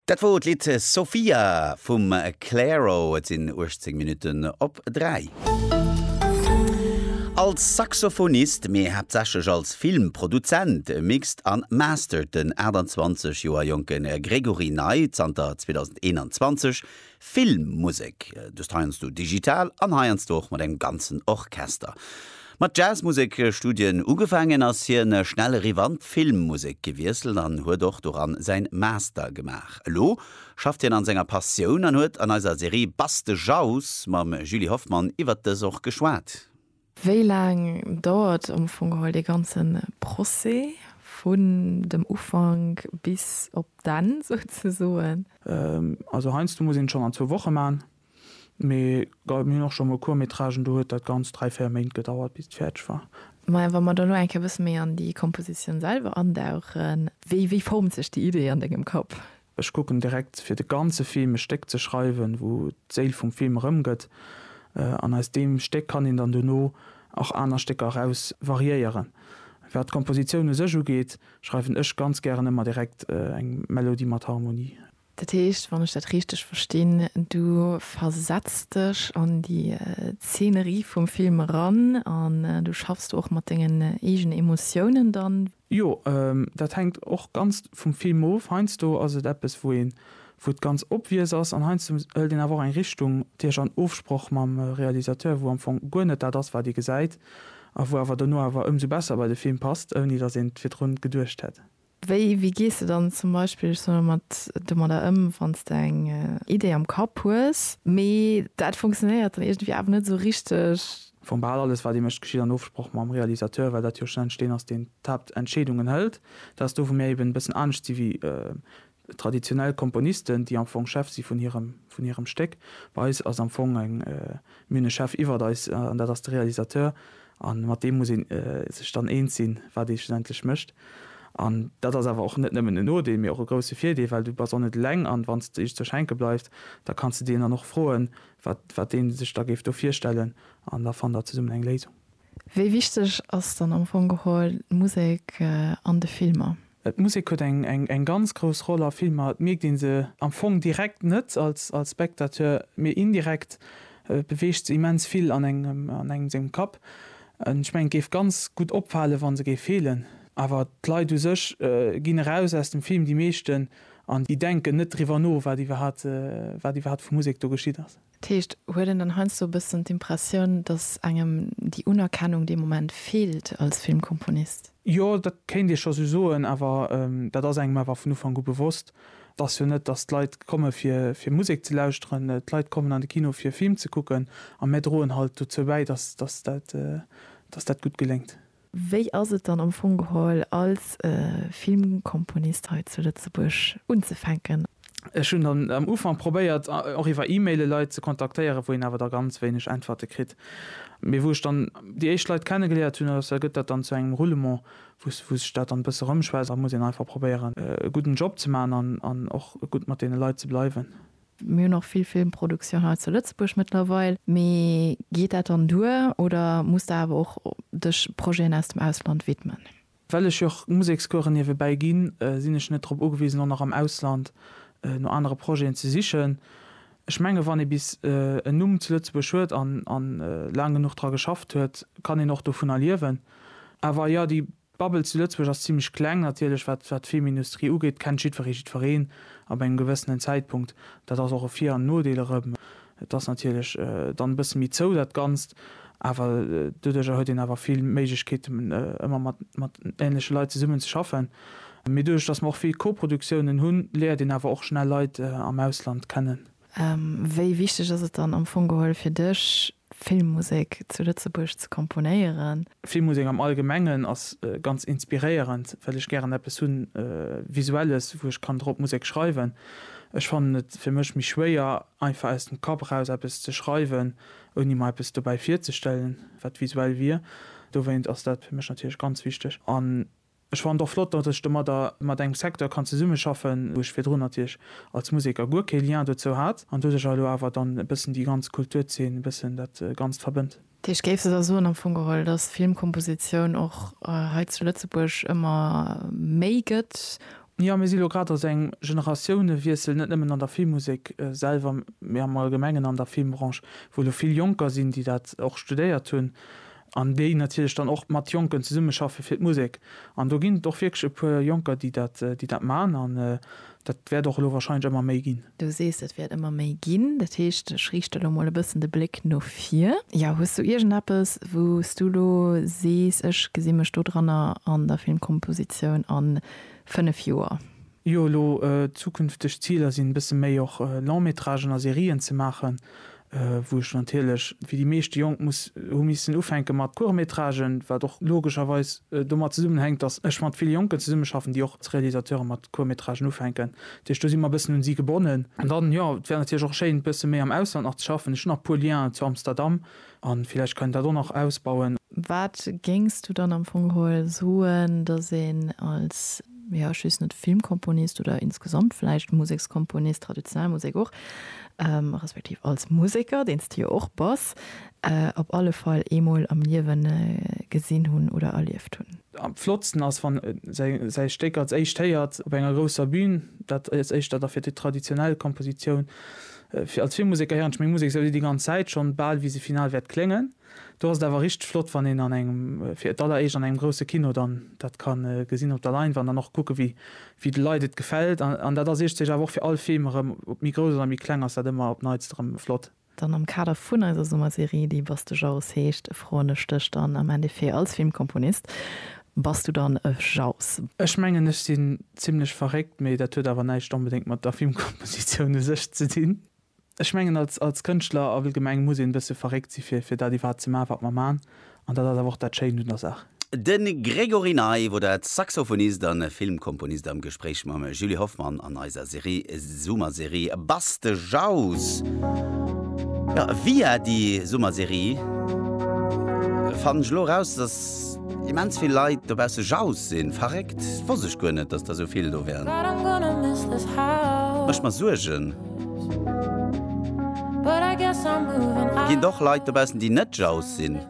Dat wor d'Lidd Sofia vum Clairo. Et sinn 18 Minutten op 3. Als Saxophonist, mee haaptsächlech als Filmproduzent, mixt an mastert den 28 Joer jonke Gregory Ney zanter 2021 Filmmusek, dëst heiansdo digital an heiansdo och mat engem ganzen Orchester. Mat Jazzmusek-Studien ugefaangen, ass hien schnell eriwwer an d'Filmmusek gewiesselt an huet och doran säin Master gemaach. Elo schafft hien an senger Passioun an huet an eiser Serie Bass de Jauss mam Julie Hoffmann iwwert dës och geschwat. Wéi laang dauert am Fong geholl dee ganze Procès, vun dem Ufank bis op d'Enn souzesoen? Also heiansdo muss een et schonn an zwou Woche maachen, mee mir hunn och schonn mol Court-métragen, do huet dat Ganzt dräi, véier Méint gedauert, bis et fäerdeg war. Maja, wa mer dann elo eng Kéier e bësse méi an déi Kompositioun selwer andauchen, wéi formt sech déi Idee an dengem Kapp? Ech kucken direkt fir de ganze Film e Stéck ze schreiwen, wou d'Séil vum Film erëmgëtt, an aus deem Stéck kann een dann dono och aner Stécker eraus variéieren. Wat d'Kompositioun u sech ugeet, schreiwen ech ganz gären ëmmer direkt eng Melodie mat Harmonie. Dat heescht, wann ech dat richteg verstinn, du versetz dech an déi Zeenerie vum Film eran an du schaffs do och mat dengen eegene Emotiounen dann? Jo, dat hänkt och ganz vum Film of. Heiansdo ass et eppes, wou een, wou et ganz obvious ass, an heiansdo hëlt een awer och eng Richtung duerch an Ofsproch mam Realisateur, wou am Fong guer net dat ass, wat ee gesäit, a wou awer dono awer ëmsou besser bei de Film passt, ouni datt een et virdrun geduecht hätt. Wéi, wéi gees de dann zum Beispill, ech soen elo mat, domadder ëm, wann s de eng Idee am Kapp hues, mee dat funktionéiert dann iergendwéi awer net esou richteg, Wou bal alles wat ee mécht geschitt an Ofsproch mam Realisateur, well dat jo schlussendlech deen ass deen d'Haaptentscheedungen hëlt. Dat ass do wou mir eben e bëssen anescht si wéi traditionell Komponisten, déi am Fong Chef si vun hirem vun hirem Stéck. Bei eis ass am Fong eng, mir hunn e Chef iwwert eis an dat ass de Realisateur a mat deem muss ee sech dann eens sinn, wat ee schlussendlech mécht. An dat ass awer och net nëmmen en Nodeel, mee och e grousse Virdeel, well du bass och net eleng an wann s de just zur Schenke bleifs, da kanns de deen dann och froen, wat deen sech da géif do virstellen an da fannt der zesummen eng Léisung. Wéi wichteg ass dann am Fong geholl d'Musek an de Filmer? D'Musek huet eng ganz grouss Roll a Filmer. Et mierkt ee se am Fong direkt net als Spectateur, mee indirekt beweegt se immens vill an engem sengem Kapp. Ech mengen, et géif ganz gutt opfalen, wa se géif feelen. Awer d'Leit u sech ginn eraus aus dem Film, déi meeschten. An déi denken net driwwer no, wat iwwerhaapt vu Musek do geschitt ass. Dat heescht, huet een dann heiansdo e bëssen d'Impressioun, datt engem déi Unerkennung dee Moment feelt als Filmkomponist? Jo, dat kéint ee scho sou soen. Awer dat ass engem awer vun Ufank u bewosst. Et ass jo net, datt d'Leit komme fir Musek ze lauschteren. D'Leit kommen an de Kino fir e Film ze kucken a mär droen halt dozou bäi, datt dat gutt geléngt. Wéi ass et dann am Fong geholl als Filmkomponist hei zu Lëtzebuerg unzefänken? Ech hunn dann am Ufank probéiert och iwwer E-Maile Leit ze kontaktéieren, wou een awer da ganz wéineg Äntwerte kritt. Mee wou ech dann déi éischt Leit kenne geléiert hunn, da gëtt dat dann zu engem Roulement, wou sech dat dann e bësse rëmschwätzt. Da muss een einfach probéieren e gudden Job ze maachen an och gutt mat deene Leit ze bleiwen. Mir hunn och vill Filmproduktioun hei zu Lëtzebuerg mëttlerweil. Mee geet dat dann duer oder muss de awer och dech Projeten aus dem Ausland widmen? Well ech jo och Musekscoursen niewebäi ginn, sinn ech net drop ugewisen, och nach am Ausland no anere Projeten ze sichen. Ech menge wann ee bis en Numm zu Lëtzebuerg huet an laang genuch dra geschafft huet, kann een och dovunner liewen. Awer jo, déi D'Bubble zu Lëtzebuerg ass zimlech kleng, natierlech, wat wat d'Filmindustrie ugeet, kennt jiddweree jiddwereen ab engem gewëssenen Zäitpunkt. Dat ass och e Vir an Nodeel erëm. Et ass natierlech dann e bësse méi zou, dat Ganzt, awer doduerjer huet een awer vill Méiglechkeeten, ëmmer mat mat änleche Leit zesummen ze schaffen. Mee doduerch, datt mer och vill Koproduktiounen hunn, léiert een awer och schnell Leit am Ausland kennen. Wéi wichteg ass et dann am Fong geholl fir dech, Filmmusek zu Lëtzebuerg ze komponéieren. Filmmusek am Allgemengen ass ganz inspiréierend, well ech gären eppes hu Visuelles, wou ech kann drop Musek schreiwen. Ech fannen et fir mech méi schwéier, einfach aus dem Kapp eraus eppes ze schreiwen, ouni mer eppes dobäi virzestellen, wat visuell wier. Dowéint ass dat fir mech natierlech ganz wichteg. An Ech fannen et och flott, datt ech domadder mat engem Secteur kann zesummeschaffen, wou ech virdrun natierlech als Museker guer kee Lien dozou hat, an doduercher elo awer dann e bëssen déi ganz Kulturzeen, e bëssen dat Ganzt verbënnt. Dech géifs da soen am Fong geholl, datt Filmkompositioun och hei zu Lëtzebuerg ëmmer méi gëtt? Jo, mir si elo grad a sou engem Generatiounewiessel, net nëmmen an der Filmmusek selwer, mee am Allgemengen an der Filmbranche, wou elo vill Jonker sinn, déi dat och studéiert hunn, an déi natierlech dann och mat Jonken zesummeschaffe fir d'Musek. An do ginn et och wierklech e puer Jonker, déi dat, déi dat maachen an dat wäert och elo warscheinlech ëmmer méi ginn. Du sees, et wäert ëmmer méi ginn. Dat heescht, ech riichte lo mol e bëssen de Bléck no vir. Jo, hues du iergendeppes, wou s du lo sees, ech gesi mech dodranner an der Filmkompositioun a fënnef Joer? Jo elo zukünfteg Ziler sinn e bësse méi och Long-métragen a Serien ze maachen, wou ech natierlech wéi déi meeschte Jonk muss hu missen ufänke mat Court-métragen, wat och logescherweis domat zesummenhänkt, datt ech mat ville Jonken zesummeschaffen, déi och als Realisateure mat Court-métragen ufänken. Dat heescht do si mer e bëssen un si gebonnen. An dann, jo, et wär natierlech och schéin e bësse méi am Ausland nach ze schaffen. Ech hunn nach e puer Lienen zu Amsterdam, An villäicht kann een dat och nach ausbauen. Wat géings du dann am Fong geholl soen, datt een als, jo, just net Filmkomponist oder insgesamt villäicht Musekskomponist, traditionell Musek och, respektiv als Museker, deen s de jo och bass, op alle Fall eemol am Liewen gesinn hunn oder erlieft hunn? Am flottsten ass, wann säi Stéck als éischt héiert op enger grousser Bühn. Dat ass éischter da fir déi traditionell Kompositioun. Fir als vill Museker héieren ech meng Musek esou wéi déi ganz Zäit schonn, bal wéi se final wäert kléngen. Do ass et awer richteg flott, wann een an engem, fir d'alleréischt an engem grousse Kino dann dat ka gesinn op der Leinwand an och kucken, wéi de Leit et gefält. An dat ass iergdstech awer och fir all Film erëm, ob méi grouss oder méi kleng, ass dat ëmmer op d'Neitst erëm flott. Dann am Kader vun eiser Summerserie, déi Bass de Jaus heescht, froen ech dech dann am Endeffet als Filmkomponist, Bass du dann e Jauss? Ech mengen ech sinn zimlech verréckt, mee dat huet awer näischt onbedéngt mat der Filmkompositioun u sech ze dinn. Ech mengen als als Kënschtler allgemeng muss een e bësse verréckt si fir fir dat iwwerhaapt ze maachen wat mer maachen an dat ass awer och dat Schéint un der Saach. De Gregory Naief oder Saxophonist a Filmkomponist am Gespréich mam Julie Hoffmann an eiser Serie. Summerserie Bass de Jaus. Jo, via déi Summerserie fannen ech elo eraus, dass immens vill Leit dobausse Jaus sinn. Verréckt, wosst ech guer net, dass der esou vill do wären. Mécht mer Suergen. Ginn et och Leit dobaussen, déi net Jaus sinn?